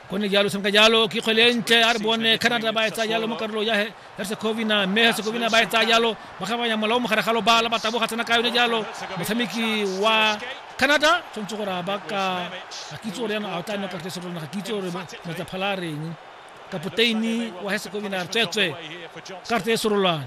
go ne jalo senka jalo ke kgwele ntle a re bone canada ba etsa jalo mo karolo ya herzegovina mme herzegovina ba etsa jalo ba kgabanya molao mogare ga lobala ba taboga tsena ka yone jalo motshameki wa canada tshwanetse gore a ba ka ga kitse gore yana a tla nna kartese rona ga kitse gore metsa phala a reng kapoteini wa herzegovina tswetswe karte e sorolwane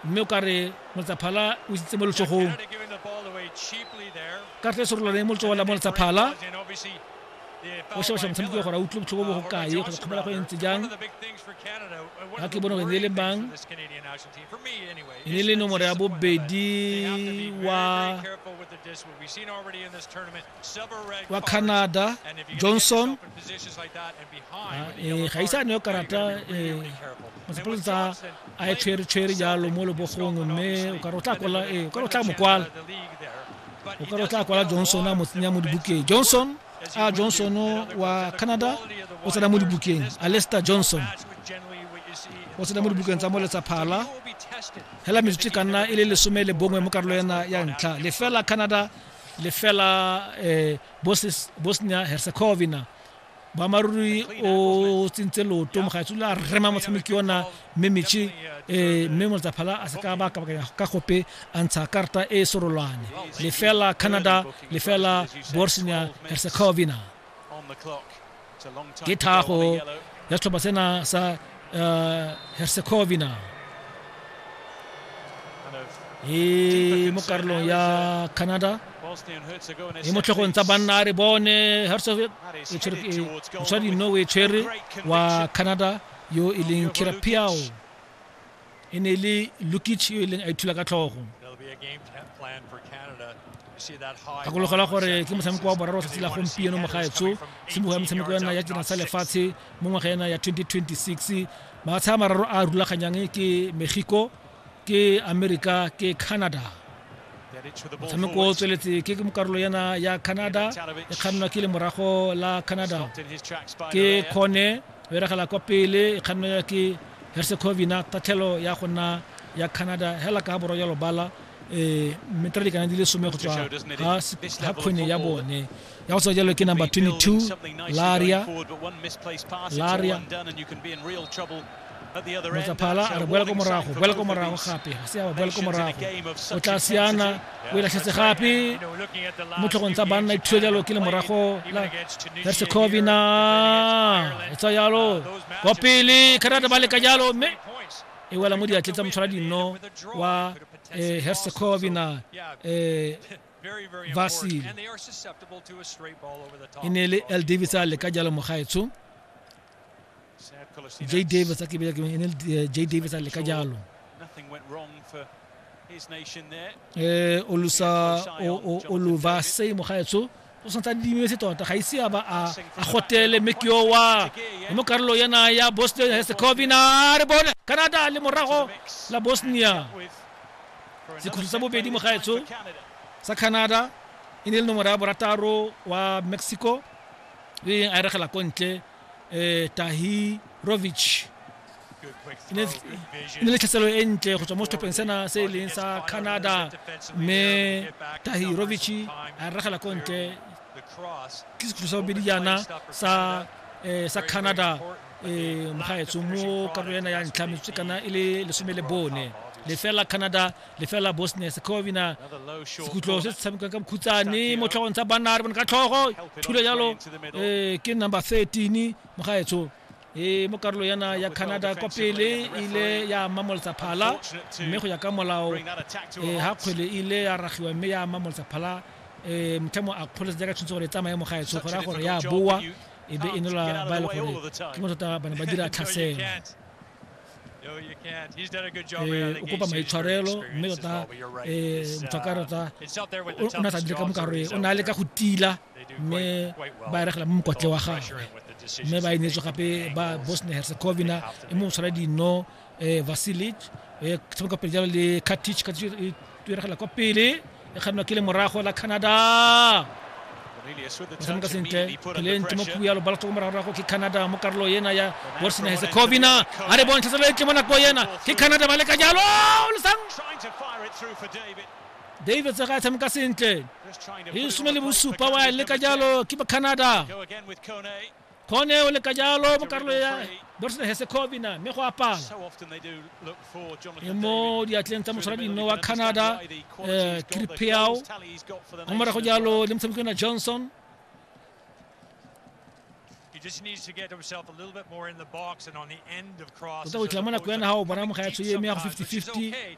mme o ka re moletsaphala o isitse mo letsogong ka tle serolwane mo letsogo la mo letsaphala o shebasha motshameki wa gore a utlwe botlhoko bo go kae kgotsa kgomela go e ntse jang ga ke bone gore ne e le mang e ne e le nomoro ya bobedi wa wa canada johnson ah, eh, ga isa ne karata eh, masepolo tsa a e tshweretshwere jalo mo lebogong mme o ka re o tla kwala eh, o ka re o tla mokwala o ka re o tla kwala johnson a mo tsenya mo dibukeng johnson a ah, johnson wa canada o tsena mo dibukeng alester johnson o tsena mo dibukeng tsa mo letsaphala hela metsotso e ka nna e le lesome le bongwe mo karolo ena ya ntlha lefela canada lefela um bosnia herzegovina boammaaruri o tsentse loto mogaetsolo a rema motshameki ona mme metšhi um mme motsaphala a se ka ba kabakanya ka gope a ntsha karata e sorolwane lefela canada lefela bosnia herzegovina ke thago ya setlhopha sena sa uh, herzegovina e mo karolong ya canada e mo tlhogong tsa banna a re bone herzegovina e tshwere wa canada yo e leng kirapiao e ne e le Lukic yo e leng a ithula ka tlhogo gakologelwa gore ke motshameko wa boraro tsatsi la gompieno mogaetso simologo ya metshameko ya nna ya tsena sa lefatshe mo ngwaga ena ya 2026 mafatshe a mararo a rulaganyang ke mexico ke america ke canada motshameko o tsweletse ke karolo yana ya canada e kgannwa ke lemorago la canada ke kgone E regela kwa pele e kgannelwa ke Herzegovina, tatlhelo ya go nna ya Canada hela ka borwa ya lobala metara dikana di le some go tswa ga kgwene ya bone ya go tswa jalo ke number 22 laria laria motsaphala a re boela ko morago boela ko morago gape ga se ya boela ko morago o tla siana o ilatlhetse gape mo tlhogong tsa banna ithusa jalo ke le morago la hersegovina e tswa jalo kwa pele canada ba leka jalo mme e wela mo diatleng tsa motshwara dinno wa eh, hersegovina eh, vasile e ne le l davis a leka jalo mogaetsho Jay Davis a ke bile ke ene eh, Jay Davis a le ka jalo eh olusa oluva sei mo gaetsho o santsa dimiwe se tota ga ise a ba a gotele mme ke owa mo karolo yana ya bosnia herzegovina re bone canada le morago la bosnia sekhutlho sa bobedi mo gaetsho sa canada e ne e le nomoro ya borataro wa mexico e a eregela ko ntle eh, tahirovic e ne e le tlhaselo e ntle go tswa mo setlhopheng sena se e leng sa canada mme tahirovic a ragela ko ntle ke sekhutlo sa bobedi jaana sa eh, sa canada um mogaetsho mo karolo ena ya ntlha metsotso kana e le lesome le bone lefela canada lefela bosnia secovina sekhutlho se se tshamekang ka mokhutsane mo tlhogong tsa banna re bone ka tlhogo thule jalo um ke number thirteen mogaetsho e mo karolo yana ya canada kwa pele ile ya mamolotsa phala mme go ya ka molao um ga kgwele ile ya ragiwa mme ya mamolotsa phala um motlhamo a kgoletse jaaka tshwanetse gore e tsamaye mogaetsho go raya gore ya boa e be e nola ba e le gore ke mo tota ba ne ba dira tlhasela ee o kopa maitshwarelo mme tota ee motho ka tota o ne sa dire ka mokaro e o ne a leka go tila mme ba eregela mo mokotle wa gagwe mme ba inetswe gape ba bosnia herzegovina e mo tshwara dino um vasilic um tshameka pele jalo le katic tueregela kwa pele e kganwa ke le morago la canada batshameka sentle peleng temokhubu ya lobala tlhoko moragorago ke canada mo karolo ena ya bosnia herzegovina a re bontsha selo etle mo nako ena ke canada ba leka jalo lesang david tsega a tshameka sentle e some le bosupa wa leka jalo ke ba canada kgone o leka jalo mo karolo ya borsene hesekovina mme go apala e mo diatleng tsa motshwara dino wa canada um kirpeao mo morago jalo le motshameko na johnson tota o itlha mo nako ya naga o bona moga ya tshoyeme ya go 50-50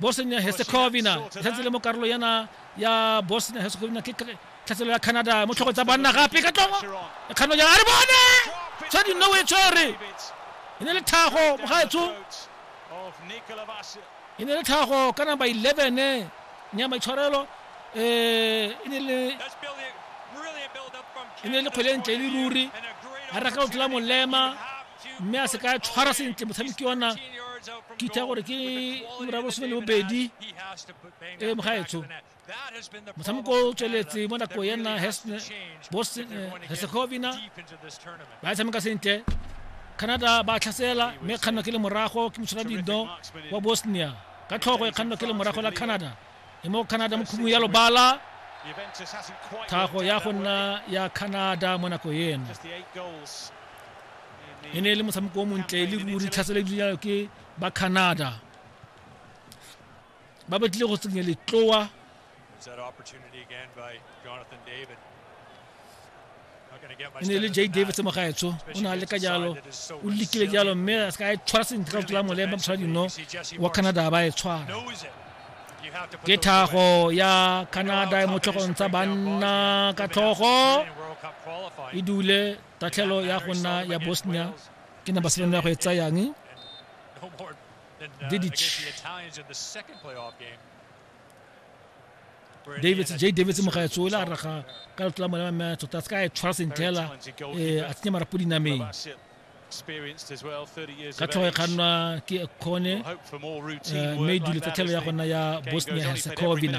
Bosnia Herzegovina e santse le mo karolo yana ya Bosnia Herzegovina ke tlhatselo ya Canada mo tlhogo tsa banna gape ka tlongo ya kgano ya re bone tshwa di nowe tshwere e ne le tlhago mogaetsho e ne le tlhago ka number 11 nya maitshwarelo eh e ne le e ne le kgwele ntle le ruri a reka o tla molema mme a se ka tshwara sentle motshameki wa nna ke itha gore ke ura bosome le bobedi e mogaetsho motshameko o tsweletse mo nako ya nna hesegovina eh, ba tshameka sentle canada ba tlhasela mme kganno ke le morago ke motshwara dindo wa bosnia ka tlhogo e kganno ke le morago la canada e mo canada mo khumung ya lobala tlhago ya go nna ya canada mo nako eno e ne e le motshameko o montle e le ruri tlhaselo ebile ke ba canada ba batlile go tsenya letloa e ne e le j davis mogaetsho o ne a leka jalo o lekile jalo mme a seka a e tshwara sentle ka tlola molemba motshwara dino wa canada ba e tshwara ke thago ya canada e mo tlhogong tsa banna ka tlhogo e dule tatlhelo ya go nna ya bosnia ke na baselone ya go e tsayang didic davis j davis mogaetso o ile a raga ka lefto la mone wa mme tota se ka e tshwara sentle hela eh, a tsenye marapo dinameng ka tlhogo e kgannwa ke kgone eh, mme e dule tsa tlhelo ya gona ya bosnia herzegovina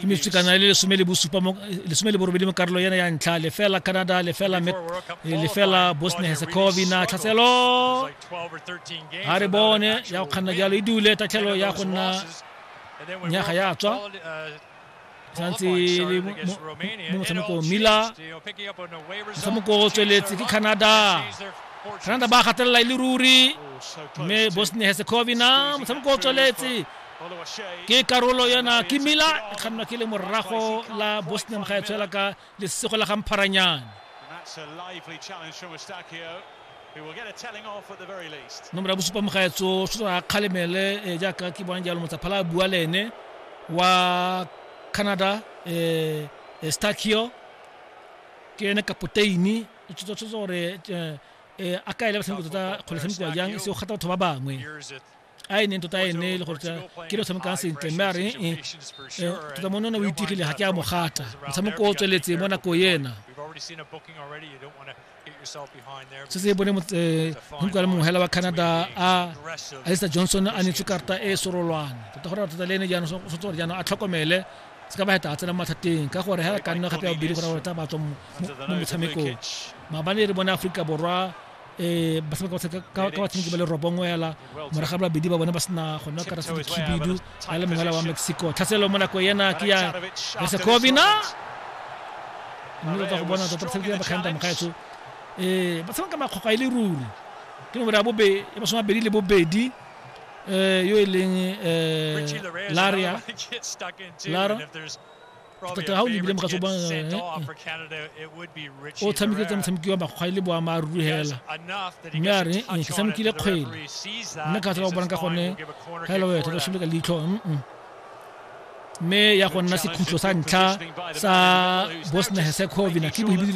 ke metswekana e le lesome le bosupa mo lesome le borobedi mo karolo ena ya ntlha lefela canada lefela lefela bosnia herzegovina tlhatselo ga re bone ya go kganna jalo e dule tatlhelo ya go nna nyaga ya tswa tsatsi le mo- mo- mo mo motshameko mila motshameko o tsweletse ke canada canada ba gatelela e le ruri mme bosnia herzegovina motshameko o tsweletse ke karolo yona ke mila e kgannwa ke le morago la bosnia moga e tshwela ka Lesego la ga Mpharanyane. Nomoro ya bosupa mogaetso Shota a kgalemele eh, jaaka ke bona jalo motsaphala a bua le ene wa Canada eh, eh, Starkio ke ene kapoteini o tshotse tshotse gore eh, eh, a ka ele batshameko tota kgole tshameko jang e se o gata batho ba bangwe a e neng tota e nne e le gore ke le tshamekang sentle mme a re e tota mone o itigile ga ke a mogata motshameko o tsweletse mo nako ena se se bone monkwa le mongwe hela wa canada a alisa johnson a netswe karta e sorolwane tota gore tota le ene jaanong o tshwanetse gore jaanong a tlhokomele se ka ba heta a tsena mo mathateng ka gore hela ka nna gape ya bobedi gore gore tla batswa mo motshamekong maabane re bone aforika borwa um ba seka ka batshameki ba le robongwe ela morago ba babedi ba bone ba sena go nna karasa dikhibidu ba le mongwela wa mexico tlhaselo mo nako ena ke ya yasekobina mme ba tla go bona tota batshameki ba bakganta mogaetsho um ba tshameka makgokgwa e le ruri ke nomoro ya bobe ya e masome mabedi le bobedi um yo e leng um laria lara tota ga o lebile mogatso ba o tshamekile tsa motshameki wa makgwa le boammaaruri fela mme a re ke tshamekile kgwele mme ka tsela o bonang ka gone ga e le wetho ka shimile ka leitlho mme ya go nna sekhutlo sa ntlha sa bosnia herzegovina ke bohibidi